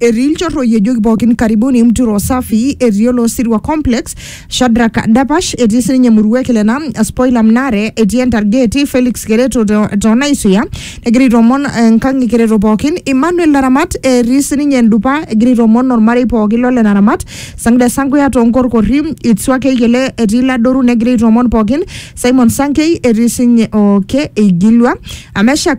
Etii ilchorroi ejoki pookin karibuni Mturo Safi, etii Olosirua Complex, Shadrack Dapash, etii sininye Murua e Kilena, Spoiler Mnare, etii Entargee, etii Felix Kereto to- too Naisuya, egira aitoomon eh, Nkang' e Kereto pookin, Emmanuel Naramat, etii sininye Endupa, egira aitoomon olmarei pookin lo le Naramat, Sangida Sankuya too Nkorkorri, Itsua Keyiele, etii Ladoru negira aitoomon pookin, Simon Sankei, etii sinye okay, eigilua, Ameshak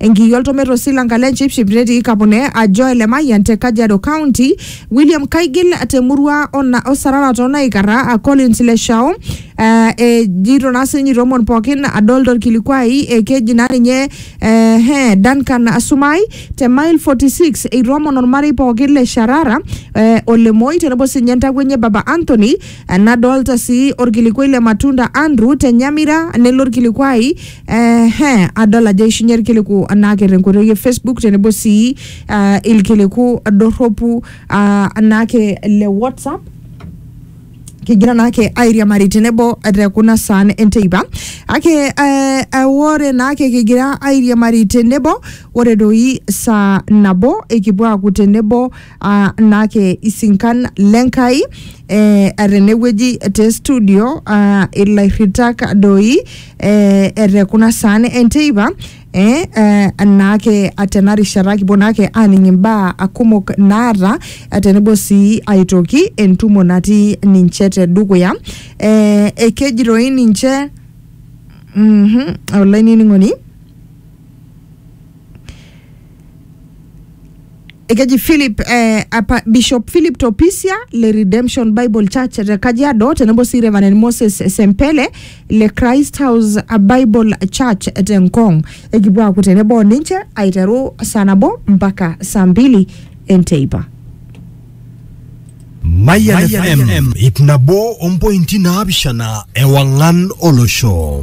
Enkiyi oltomet osilanka le Nchipship netii Kapune ajo ele Mayian te Kajiado County, William Kaigil te murua o Sarara too Naikarra, a Collins Leshao eh, ejito naa sininye itoomon pookin adol torkilikuai eh, keji naa ninye eh, he, Duncan Sumai te mile 46 eitoomon ormarei pookin le Sharara eh, o Lemoi tenebo sininye entakuenye Baba Anthony eh, nadolta sii orkilikuai le Matunda Andrew te Nyamira nelo orkilikuai Ehe, adol ajo eishunye irkiliku naake tenkoitoi e Facebook tenebo sii ah, irkiliku dorropu ah, naake le WhatsApp kigira naake airiamari tenebo te kuna saan enteipa ake eh, eh, ore naake kigira airiamari tenebo ore doi saa nabo ikipuo aaku tenebo uh, naake isinkan lenkai eh, tenewueji te studio uh, ilairritak doi eh, etekuna saan enteipa eh, eh, naake tena rishata kipuo naake aaning imbaa kumok naata eh, tenebo sii aitoki entumo natii ninche te dukuya eh, ekeji doi ninche mm -hmm, olainining'oni ekeji Philip eh, apa Bishop Philip Topisia le Redemption Bible Church te Kajiado tenebo sii Reverend Moses Sempele le Christ House Bible Church te Ngong. Ekipuo aaku tenebo o ninche aiteru saa nabo mpaka saa mbili enteipa. Mayan FM, ip nabo ompointi naapishana ewang'an olosho.